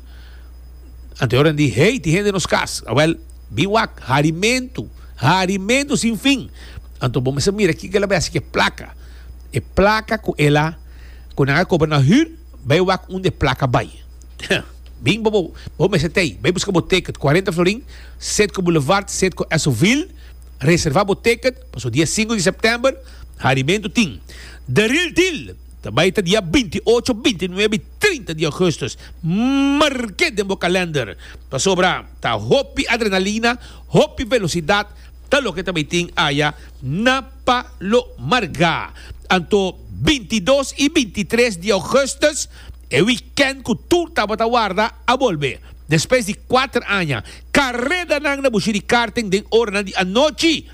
Anto e ora nan di, Hey, tin hende nos cas! Awel, bin wak, harimentu, harimentu sin fin! Anto bo mester mira kiko el a bay haci cu e placa. E plaka ku el a ku nan a kobra na hür bai wak un de plaka bai. Bin bo bo mester t'ei, bai buska bo teket, cuarenta florin, Setco Boulevard, Setco Esovil, reserva bo teket paso dia sinku di september harimentu tin. De ril dil ta bai ta dia binti ocho, binti nuebe i trinta di augustus. Marke den bo kalender pasobra ta hopi adrenalina, hopi velosidat, ta loke ta bai tin aya na. pa lo marga. Anto bintidos i bintitres di ougùstùs, e wikènt ku tur tabata warda, a bolbe. Despues di kuater aña, karedanan na bushi di karting den oranan di anochi.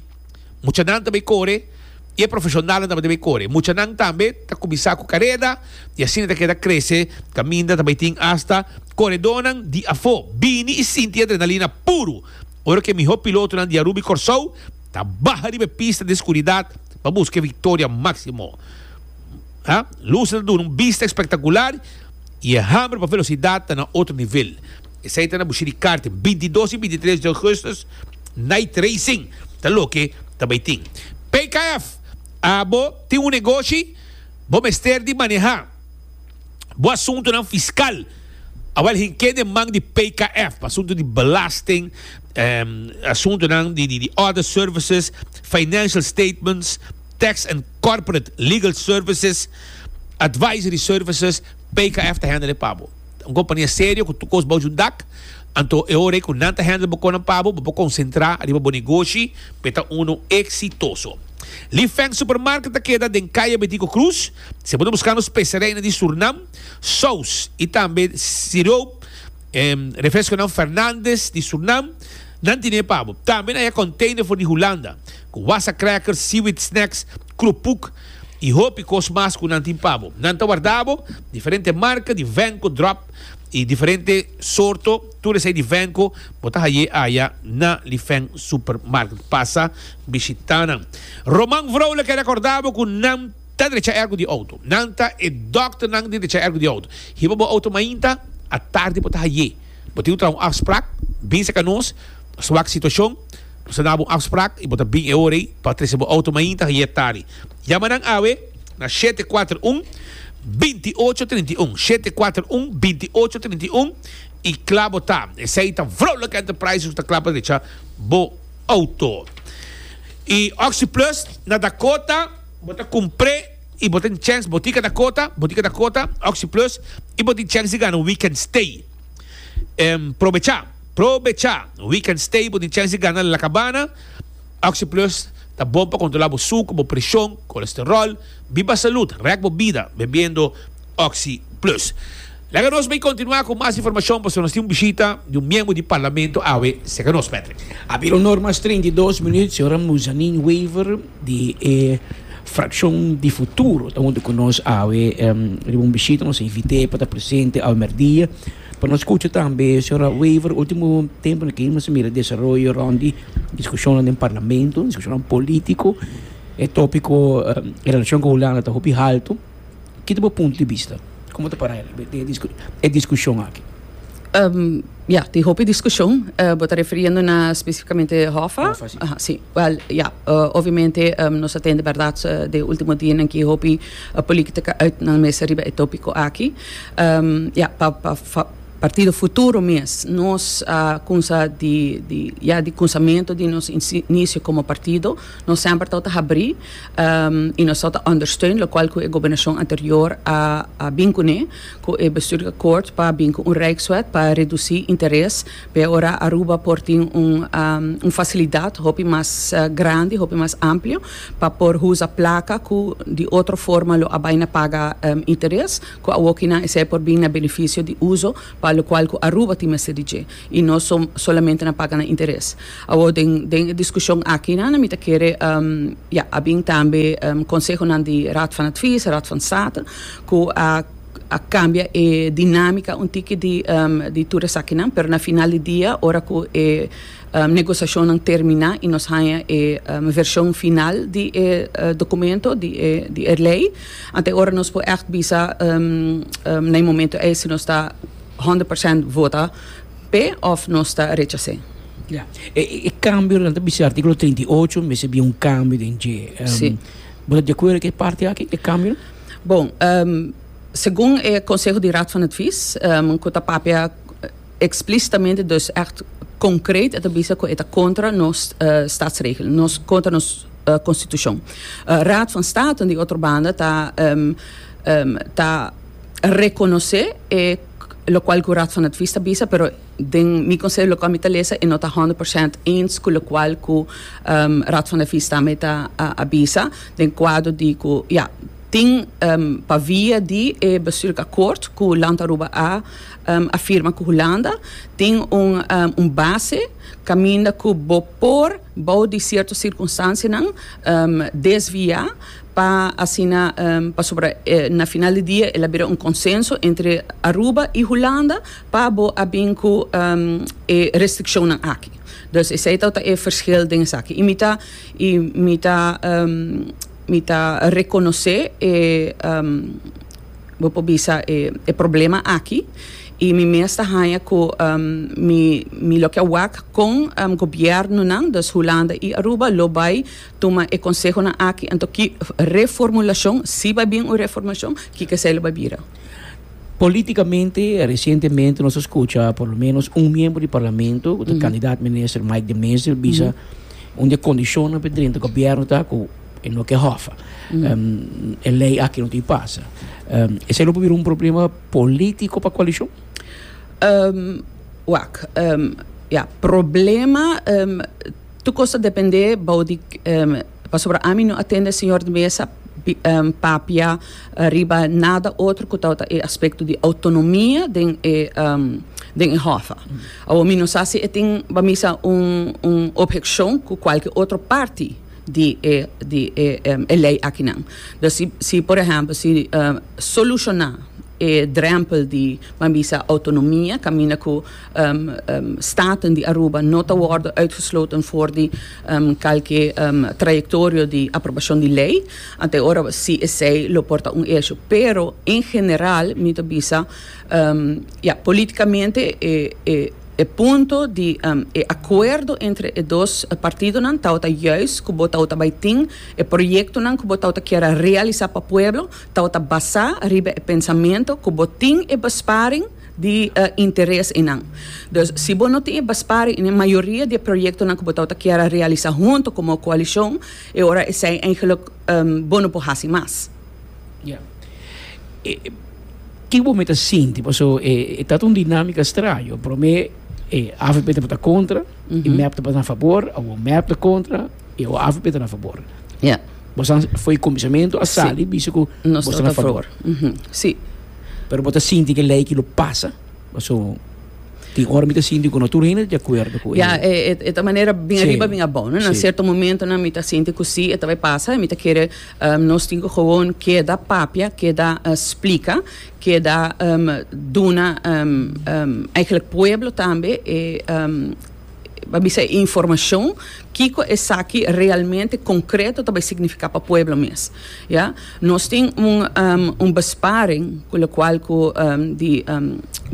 Muchanan ta bai kore i e profeshonalnan tabata bai kore. Muchanan tambe ta kuminsá ku kareda i asina ta keda krese kaminda ta bai tin asta koredónan di afó. Bini i sinti e adrenalina puru ora ku e mihó pilotonan di Aruba i Kòrsou. Ta baha riba e pista di escuridat pa busca e victoria maximo. Luces ta duna un bista espectacular y e hamber pa velocidad ta na otro nivel. Esey ta na bushi di karting. Bintidos y bintitres di augustus Night Racing ta loke ta bay tin. PKF, Abo tin un negoshi? Bo mester di maneha. Bo asuntunan fiskal a wòrdu hink'é den man di PKF pa asuntu di belasting, asuntunan di other services, financial statements, tax and corporate legal services, advisory services, PKF ta handle e pa bo. Ta un kompania serio ku tur kos bouchi un dak, anto e ora ei ku nan ta handle bo kosnan pa bo, bo por konsentrá riba bo negoshi pa e ta unu eksitoso. Li Feng Supermarket ta keda den Kaya Betico Cruz. Si bo ta buskando spesarianan di Surnam, sous i tambe siroop, refresconan Fernandes di Surnam, nan tine pa bo. Tambe nan haya container for di Hulanda, cu wassa crackers, seaweed snacks, krupuk i hopi cos mas cu nan tin pa bo. Nan ta warda bo diferente marca di venco drop i diferente soorto, tur esei di venco bo ta haye aya na Lifeng Supermarket. Pasa bishita nan. Roman Vrolijk a recorda bo cu nan. Ta drecha ergo di outo. Nan ta e dòkternan di drecha ergo di outo. Hiba bo outo mainta, a tardi bo ta haié. Bo tin un traho afsprak, bin seka nos, nos ta wak situashon, nos ta na bo un afsprak i bo ta bin e ora ei pa trese bo outo mainta, haié tardi. Yama nan awe na shete kuater un, binti ocho trinta i un, shete kuater un, binti ocho trinta i un, i kla bo ta. Esei ta Vrolijk Enterprises ku ta kla pa drecha bo outo. I Oxyplus na Dakota. Bo ta cumpre y bo tin chens botica ta cota, botica ta cota, Oxyplus y bo tin chens di gana un weekend stay. Probecha, probecha, un weekend stay bo tin chens di gana La Cabana. Oxyplus ta bon pa controla bo sucu, bo presion, colesterol, biba salud, rek bo bida bebiendo. Oxi Plus. Laga nos bay continua cu mas informacion pasobra nos tin un bishita di un miembro di Parlamento awe cerca nos, Patrick. A bira un hora mas treinta i dos minuut, señora Muzanin Wever di e fraccion di Futuro ta hunto cu nos awe riba un bishita, nos a invit'e pa ta presente awe merdia pa nos scucha tambe señora Wever, ultimo temponan aki nos a mira desaroyo rond di discusionnan den Parlamento, discusionnan politico, e topico en relacion cu Hulanda ta hopi halto. Ki ta bo punto di bista? Komo ta para e diskushon aki? Ya, tin hopi diskushon. Bo ta refiriendo na spesifikamente Hòfa? Hòfa, si. Aha, si. Wèl, ya, obviamente nos a tende bèrdat den e último dianan ki hopi polítika ùit nan mester riba e tópiko aki. Ya, pa partido futuro mes nos a kunsha di ya di kunsamentu di nos inisio komo partido. Nos semper tau ta habrí i nos tau ta ondersteun lokual ku e gobernashon anterior a bin kuné ku e bestuursakkoord pa bin ku un rijkswet pa redusí interes. P'e ora Aruba por tin un fasilidat hopi mas grandi, hopi mas amplio pa por usa plaka ku di otro forma lo a bai na paga interes, ku awokinan esei por bin na benefisio di uso pa lokual ku Aruba tin mester di dje i no solamente na paga nan interes. Awor den den e diskushon akinan mi ta kere ya a bin tambe konsehonan di Raad van Advies, Raad van State, ku a a kambia e dinamika un tiki di di tur esakinan, pero na final di dia ora ku e negosiashonnan terminá i nos haña e vershon final di e dokumento di e di e lei, anto e ora nos por ègt bisa na e momentu ei si nos ta honderd persènt vota. P'e òf nos ta rechas'é? Ya. E kambio nan ta bisa artíkulo treinta i ocho, mester bin un kambio den dje. Sí. Bo ta di akuerdo ku e parti aki, e kambio nan? Bon, segun e konseho di Raad van Advies, ku ta papia eksplistamente, dus ègt konkret, e ta bisa ku e ta kontra nos Statsregelen, nos, kontra nos Konstitushon. Raad van State, di otro banda, ta ta. rekonosé e lokual ku Raad van Advies ta bisa pero den mi konsep loke ami ta lesa e no ta honderd por sènt eens ku lokual ku Raad van Advies ta me ta a bisa den kuadro di ku ya tin pa via di e bestuurlijk akkoord ku Land Aruba a firma ku Hulanda tin un un base kaminda ku bo por bou di sierto sirkunstansianan desviá. pa asina pasobra na final di dia el a bira un consenso entre Aruba y Hulanda pa bo a bin cu e restriccionnan aki. Dus esey ta e verschil den esaki. Y mi ta y mi ta mi ta reconoce e bo por bisa e problema aki y mi mes ta haya cu mi mi loke a wak con gobiernonan, dus Hulanda y Aruba, lo bay Tuma e konsehonan aki anto ki reformulashon, si bai bin un reformashon, kiko esei lo bai bira? Politikamente resientemente nos a skucha por lo ménos un miembro di parlamento, ku ta kandidat minister, Mike de Mezil, bisa un di e kondishonnan pa e drenta gobièrnu ta ku e no ke hòfa. E lei aki no tin pasa. Esei lo por bira un problema polítiko pa koalishon? Wak, ya, problema. Tur cos ta depende bao di pasobra ami no a tende señor di mesa papia riba nada otro cu tabata e aspecto di autonomia den e hof. Awor mi no sa si e tin bamisa un un objeccion cu cualkier otro parti di e di e ley akinan. Dus si si por ehempel si soluciona e drempel di bambisa autonomia caminda cu Staten di Aruba no ta worde uitgesloten for di kalke trayectorio di aprobashon di lei. Ante ora si esei lo por ta un esho. Pero en general mi ta bisa ya, politikamente e punto di e akuerdo entre e dos partidonan tabata juist ku bo tabata bai tin e proyektonan ku bo tabata kier a realisá pa pueblo tabata basá riba e pensamentu ku bo tin e besparing. di interes enan. Dus, si bo no tin e baspari en e mayoria di e proyektonan ku bo tabata kier a realisá huntu komo koalishon, e ora esei eingelik bo no por hasi mas. Ya. Ke ku bo mester sinti? Paso e tabata un dinámika straño. Promé e avp tabata kontra, e mep tabata na fabor, awor mep ta kontra. E OAV beta na favor. Ya. Bo san foi comisionamento a sali bisa ku Nos bo ta sta na ta favor. favor. Mhm. Sí. Pero bo ta sinti ku e lei ki lo pasa. Paso tin ora mi ta sinti ku no tur hende ta di akuerdo ku e. Ya, e, e, e ta manera bin Sí. ariba, bin abou, no? Na Sí. sierto momentonan mi ta sinti ku sí, e ta bai pasa, mi ta kere, ehm, nos tin ku gewoon keda papia, keda eh, splika, keda ehm, duna, ehm, ehm, eigenlijk pueblo tambe e, ehm, a bisa e informacion kiko esaki realmente concreto ta bay significa pa pueblo mes ya nos tin un besparing cu locual cu di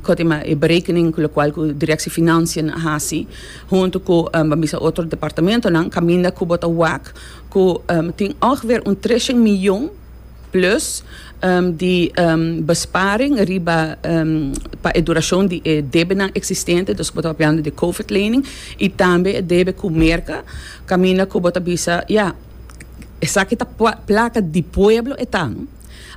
cotima e berekening cu locual cu directie financiën a haci hunto cu ban bisa otro departamentonan caminda cu bo ta wak cu tin ongeveer un trece miljoen Plus di besparing riba pa e durashon di e debenan eksistente, dus bo ta papiando di e covid lening i tambe e debe ku Merka, kaminda ku bo ta bisa, ya, esaki ta plaka di pueblo e ta, no?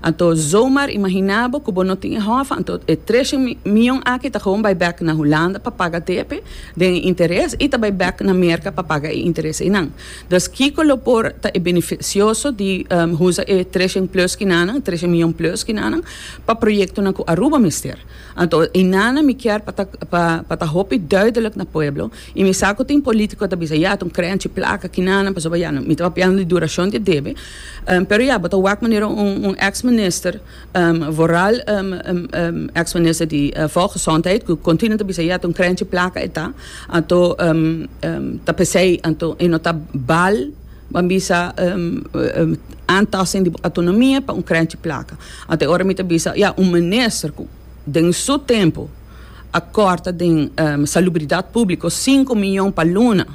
Anto zomaar imaginá bo ku bo no tin e hòf, anto e treshe mion aki ta gewoon bai bèk na Hulanda pa paga depe den e interes i ta bai bèk na Merka pa paga e interes einan. Dòs kiko lo por ta e benefisioso di usa e treshen plus kinanan, treshen miyon plus kinanan, pa proyektonan ku Aruba mester? Anto einanan mi kier pa ta pa ta hopi duidelik na pueblo i mi sa ku tin polítiko ku ta bisa ya tun krenchi plaka kinanan pasobra ya mi tabata hablando di durashon di e debe, pero ya bo ta wak manera un un eks minister. Vooral ex minister di Volksgezondheid cu continu ta bisa ya ta un krenchi plaka e ta anto ta pesey anto e no ta bal ban bisa aantasting di bo autonomia pa un krenchi plaka anto e ora mi ta bisa ya un minister cu den su tempo a corta den salubridad publico sinku miyon pa luna.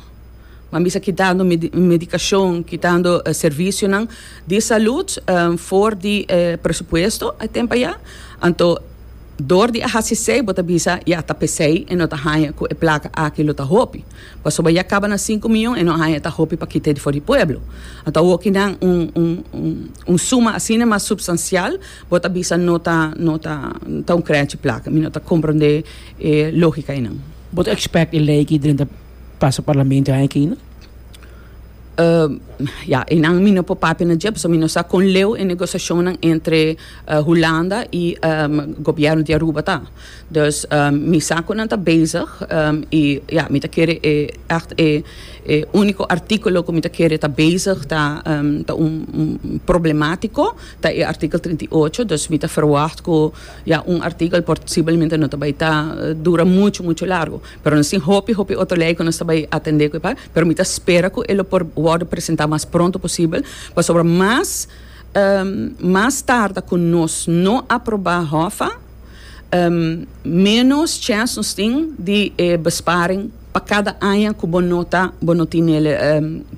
Nan bisa kitando medikashon, kitando servisionan di salut for di e presupuesto e tempo ayá. Anto dor di a hasi esei bo ta bisa ya ta p'esei e no ta haña ku e plaka aki lo ta hopi. Pasobra ya kaba na sinku miyon e no haña e ta hopi pa kita e di for di pueblo. Anto awoki nan un suma asina mas supstansial bo ta bisa no ta no ta ta un krèchi plaka. Mi no ta komprondé e lógika einan. Bo ta expect e lei aki drenta. Pasa parlamento hay aki no. Ya einan mi no por papia na dje pasobra mi no sa con leu e negociacionnan entre Hulanda y gobierno di Aruba ta. Dus mi sa cu nan ta bezig y ya mi ta kere e echt e e unico articulo cu mi ta kere ta bezig ta ta un problematico ta e artikel trinta y ocho dus mi ta verwacht cu ya un artikel posiblemente no ta bay ta dura mucho mucho largo. Pero nos tin hopi, hopi otro ley cu nos ta bay atende cu e pal, pero mi ta spera cu e lo por wordo presenta mas pronto posibel, pasobra mas, mas tarda cu nos no aproba hofa, menos chance nos tin di e besparing pa cada aña cu bo no ta, bo no tin el,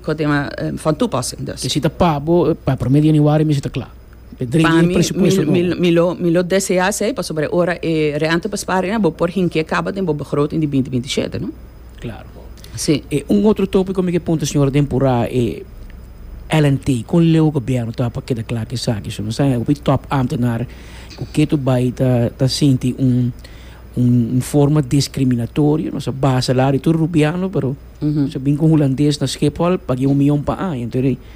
cu ta kama, van toepassing. Dus. Te cita pa bo, pa prome di januari mesmo ta cla. Pa mi, mi, mi lo, mi lo desea esei pasobra ora e rènta pa spara ena bo por hink'é kaba den bo begroting di binti binti shete, no? Klaro. Sí. E un otro tópiko mi ke puntra señora Dempurá e LNT. Kon leu gobièrnu ta haña pa keda kla ku esaki? Su nos ta haña hopi tòp ámtenar ku ke tur bai ta ta sinti un un forma diskriminatorio. Nos a basa la di tur rubiano pero nos a bin ku un hulandes na Schiphol pag'é un mion pa aña.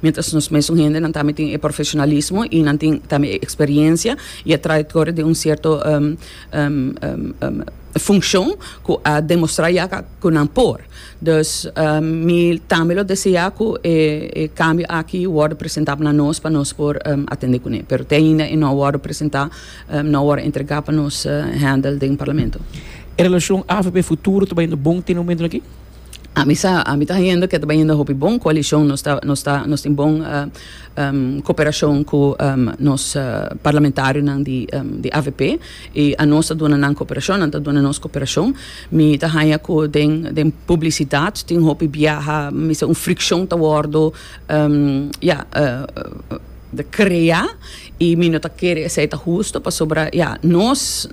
Miéntras nos mesun hendenan tambe tin e profesionalismo i nan tin tambe e eksperiencia i e trayektoria den un sierto funkshon ku a demostrá ya ku nan por. Dus mi tambe lo deseá ku e kambio aki wòrdu presentá pa nos pa nos por atendé kuné. Pero te ainda e no a wòrdu presentá, no a wòrdu entregá pa nos handel den Parlamento. E relashon avp-futuro ta bai yendo bon te momentonan aki? A mi sa, a mi ta hendo ke ta bai hendo hopi bon koalishon. Nos ta, nos ta, nos tin bon koperashon ku nos parlamentarionan di di avp i a nos ta duna nan koperashon, nan ta duna nos koperashon. Mi ta haña ku den, den publisidat tin hopi biaha, mi mester un frikshon ta wòrdu, ya. ta crea y mi no ta kere esey ta husto pasobra ya nos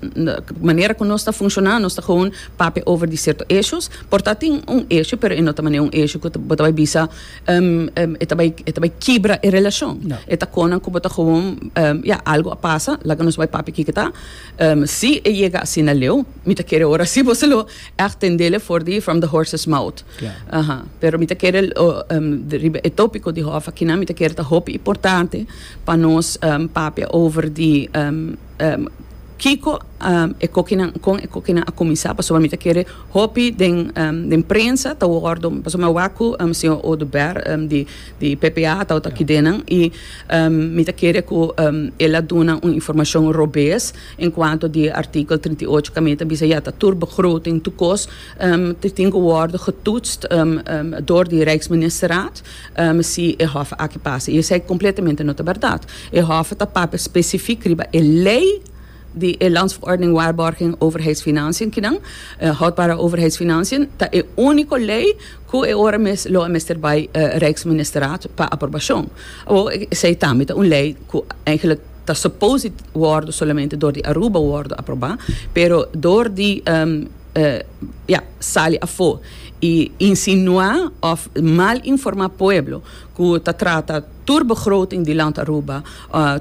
manera cu nos ta funciona nos ta gewoon papia over di cierto issues por ta tin un issue pero e no ta manera un issue cu bo ta bay bisa e ta bay e ta bay kibra e relacion e ta conan cu bo ta gewoon ya algo a pasa laga nos bay papia kiko ta si e yega asina leo mi ta kere ora si bo ta lo Echt tendele for di from the horses mouth. Aha. Pero mi ta kere riba e topico di hof akina mi ta kere ta hopi importante pa nos papia over di kiko e kokinan kon e kokinan a kuminsá pasobra mi ta kere hopi den prensa ta wordo pasobra mi a wak ku señor Oduber di di PPA a tabata aki den nan i mi ta kere ku el a duna un informashon robes. En cuanto di e artikel trinta i ocho caminda ta bisa ya ta tur begroting tur cos ta tin cu wordo getoetst door di Rijksministerraad si e hof aki pasa. Y esey completamente no ta berdad. E hof ta papia specifiek riba e ley di e Landsverordening Waarborging Overheidsfinanciën kinan, Houdbare Overheidsfinanciën, ta e unico ley cu e ora mes lo a mester bay Rijksministerraad pa aprobacion. Awor esey tambe ta un ley cu eigenlijk. ta supposed wordo solamente door di Aruba wordo aproba pero door di ya sali afo y insinua of mal informa pueblo cu ta trata tur begroting di Land Aruba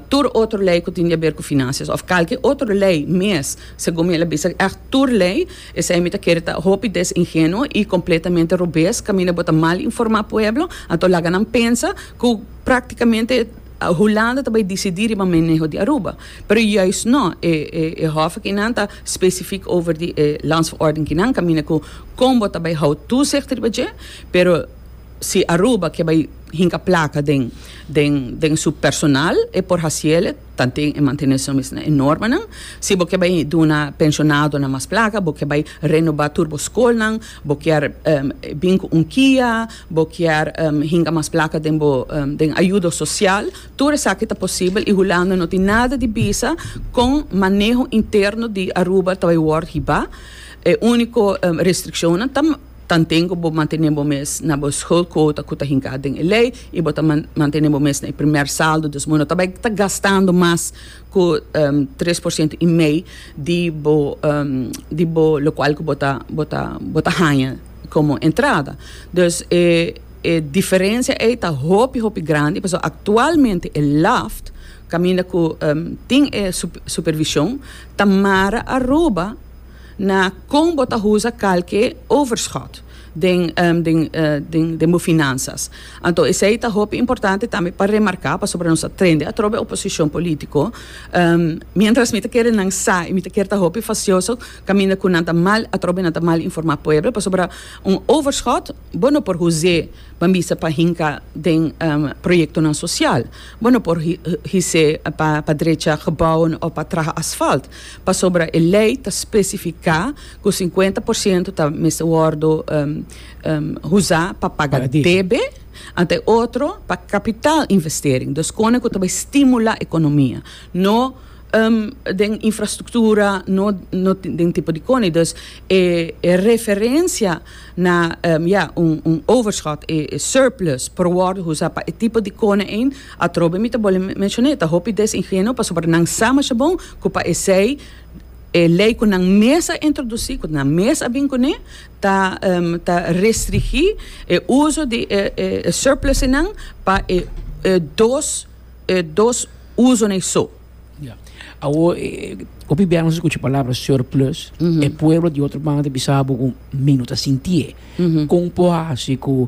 tur otro ley cu tin di haber cu financias of calke otro ley mes segun mi el a bisa echt tur ley esey mi ta kere ta hopi desingenuo y completamente robes caminda bo ta mal informa pueblo anto laga nan pensa cu practicamente. Hulanda ta bai disidí riba maneho di Aruba, pero juist no. E e hof aki nan ta specifiek over di e landsverordening ki nan kaminda ku kon bo ta bai hou toezicht riba dje, pero si Aruba ke bai hinka plaka den den den su personal e por hasiele tanten e manteneshon mes na e normanan. Si bo ke bai duna penshonado nan mas plaka, bo ke bai renobá tur bo skolnan, Bo kier bin cu un kia, bo kier hinga mas placa den bo den ayudo social, tur esaki ta posibel y Hulanda no tin nada di bisa con maneho interno di Aruba ta bay word hiba. E unico restriccionnan ta tanten cu bo mantene bo mes na bo schuldquota cu ta hinca den e ley y bo ta mantene bo mes na e primer saldo, dus bo no ta bay ta gastando mas cu tres por ciento y mei di bo di bo locual cu bo ta bo ta bo ta haña como entrada. Dus e e diferencia ei ta hopi hopi grandi pasobra actualmente e LAFT caminda cu tin e supervision ta mara Aruba na con bo ta usa calke overschot. den bo finansas. Anto esei ta hopi importante tambe pa remarká pasobra nos a trende atrobe oposishon polítiko. Miéntras mi ta kere nan sa i mi ta kere ta hopi fasioso kaminda ku nan ta mal atrobe nan ta mal informá pueblo pasobra un overschot bo no por hus'é pa bisa pa hinka den proyektonan sosial. Bo no por his'é pa drecha gebouwen òf pa traha asfalt pasobra e lei ta spesifiká cu cincuenta por ciento ta mester wordo uza pa paga debe, anto e otro pa capital investering, dus cosnan cu ta bay stimula economia, no den infrastructura, no den tipo di cona, dus e referencia na ya un overschot, e surplus por wordo uza pa e tipo di cona ein, atrobe mi ta bolbe mencion'é, ta hopi desingenuo pasobra nan sa masha bon cu pa esey. E lei ku nan mes a introdusí, ku nan mes a bin kuné, ta ta restrigí e uso di e e e surplusnan pa e e dos e dos usonan esou. Ya. Awo, hopi bia nos a skucha palabra surplus, e pueblo di otro banda ta bisa bo ku mi no ta sintié. Kon por hasi ku